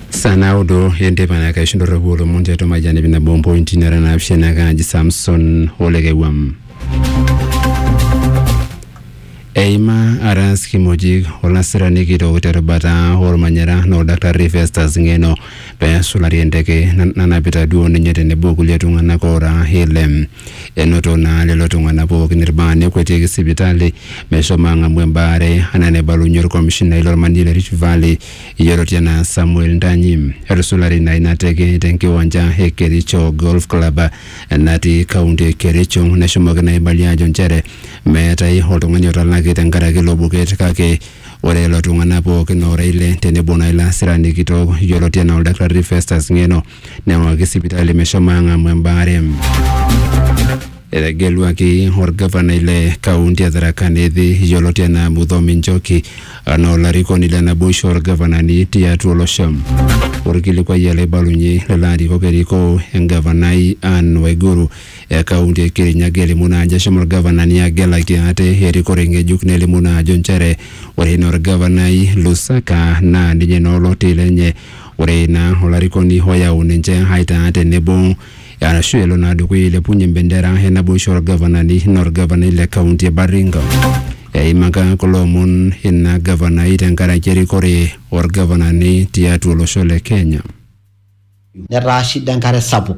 saa naudo enteipa naa kaisho ndorropu olomon tiatua majani nabo mpointi nara naapishana kaaji samson olekewam eima aras kimojik olasirani kitok terubata olmanyara na oldaktarri festus ng'eno pesulari enteke na- nanapita duo ninye tenebo kulie tung'anak oora ile Enoto naa lelo tung'anak pookin ilbaa nekuetieki sipitali meshomo ang'amu embaare anaa enaibalunye olkomishinai lolmanji le Rift Valley yioloti anaa Samuel Ntanyi. Etusulari ina ina teke te nkiwanja e Kericho Golf Club natii kaunti e Kericho neshomoki naa aibalie aajo nchere meetae oltung'ani otalaki tenkaraki ilo buket kake ore lelo tung'anak pookin oora ile tenebo naa ilo asirani kitok yioloti anaa oldakitari Festus Ng'eno neng'oki sipitali meshomo ang'amu embaare. Etegeluaki orgavanai le kaunti e Tharaka Nithi yioloti enaa Muthomi Njoki anaa olarikoni le naboisho orgavanani tiatua olosho. Orkilikuai ele oibalunye lelo arikok erikoo engavanai Anne Waiguru e kaunti e Kirinyaga elimu naa ajo eshomo orgavanani agelaki ate erikore ng'ejuk nelimu naa ajo nchere ore ina orgavanai Lusaka naa ninye naa oloti lenye Ore ina olarikoni oyau ninche aitaa tenebo arashu elo naa dukuya ailepunye embendera e naboisho olgavanani naa olgavanai le kaunti e Baringo. Eimaka kulo omon ina gavanai tenkaraki erikore olgavanani tiatua olosho le Kenya. Netaa shida enkare sapuk.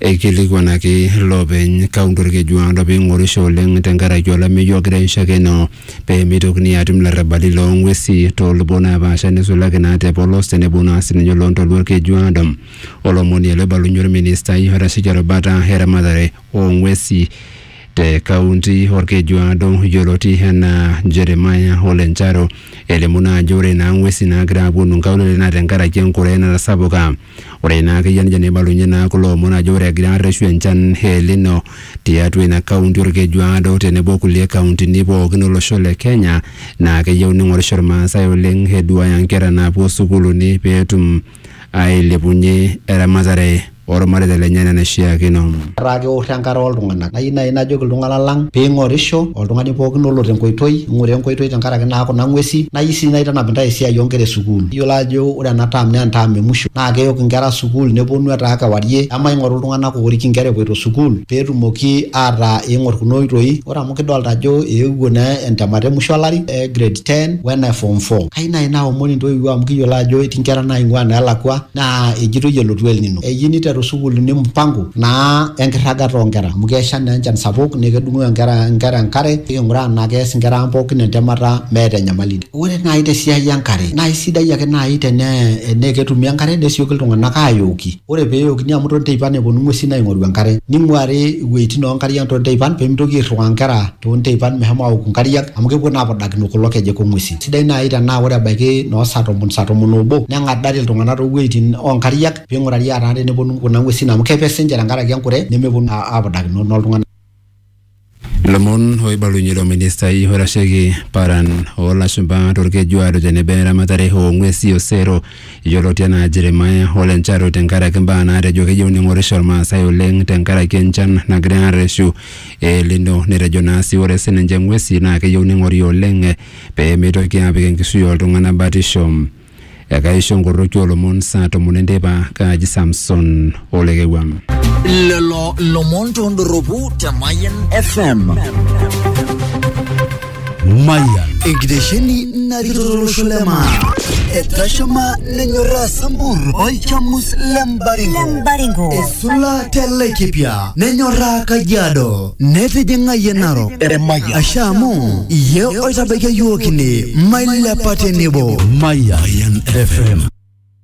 Eikilikuanaki loopeny kaunti Olkejuado pee eing'orisho oleng tenkaraki olameyu ogira aishakeno pee meitokini aatum ilarrabali loo ng'wesi too lubot naapaasha neisulaki naa te polos tenebo naa sininye oloo ntoluo Olkejuado. Olomoni ele obalunye olministai oitasheki erubata e ramatare oo ng'wesi te kaunti Olkejuado yioloti enaa Jeremiah Ole Ncharo elimu naa ajo ore naa ng'wesi naagira aapuonu nkaulele naa tenkaraki enkure natasapuka. Ore ina akeyie nejo neibalunye naa kulo omon ajo ore egira arreshu enchan e El Nino tiatua ina kaunti Olkejuado tenebo o kulie kauntini pookin olosho le Kenya naa keyieu neing'orisho Ilmaasai oleng eduaaya nkera naapuo sukuuluni pee etum aailepunye eramatare oolmareita lenye enaa enaishiakino. Etaa keoro enkata oo ltung'ana. Nayieu naaji najoki iltung'ana lang pee ing'orisho, oltung'ani pooki olo te nkoitoi, ing'ura enkoitoi tenkaraki naa kuna ng'uesi. Nayieu sii naitanap intae esiai oo nkera e sukuul. Iyiolo aajo ore ena term naa enterm e musho naa keok inkera sukuul nepuonu etaa kewarie. Emaing'oru iltung'ana oorik inkera epuoito sukuul pee etumoki ataa eing'or kuna oitoi. Ore amu kidolita ajo eewuo naa entemata e musho o lari e grade ten o ene form four. Kayieu naaji naomon intoiwuo amu kiyiolo ajo etii inkera naing'ua naa elakua. Naa ejitoi elotu El Nino. Eyieu neiteru sukuulini mpango naa enkirragata oo nkera amu kesha naa enchan sapuk naa kedung'oo nkera enkare niking'uraa enaa keas nkera ang pooki entemata meeta enyamali. Ore naai te siai e nkare naa eisidai ake naai tenaa ketumi enkare nesioki iltung'anak aayooki. Ore pee eyookini amu too nteipan epwonu ng'wesi aing'oru enkare. Ning'wari iwueitin oo nkariak too nteipan pee mitoki airriwaa nkera too nteipan meshomo aoku nkariak amu kepwo naa apudakino kulo kejek o ng'wesi. Sidai naaji tenaa ore ebaiki noo saa tomon, saa tomon oobo neng'adari iltung'anak too wuejitin oo nkariak pee ing'urari ataa teneponu kuna ng'uesin amu kepe sii ninche tenkaraki enkure nemeponu naa apudakino naa iltung'anak. Ilomon oibalunye ilo ministai oitasheki paran oo lashumpa to Lkeju ajo tenebo eramatare oo ng'uesi o sero yioloti anaa Jeremiah Ole Ncharu tenkaraki imbaa naatejo keyieu neing'orisho Ilmaasai oleng tenkaraki enchan nagira arreshu e El Nino netejo naa sii ore sii ninche ng'uesi naa keyieu neing'ori oleng pee meitoki aapik enkishui oo ltung'ana batisho. Ekaisho nkoroki oo lomon saa tomon enteipa, kaaji Samson Olekewua. Lelo lomon tondorropu te Mayian FM. Mayian. Enkitesheni narikito tolosho le maa. Etashama nenyorraa Sambur olchamus le Mbaringo. Esula te Laikipia nenyorraa Kajiado. netijing'a yie narok Eremayian. ashe amu iyie oitabaikia yiook ine mailepa tenebo Mayan FM.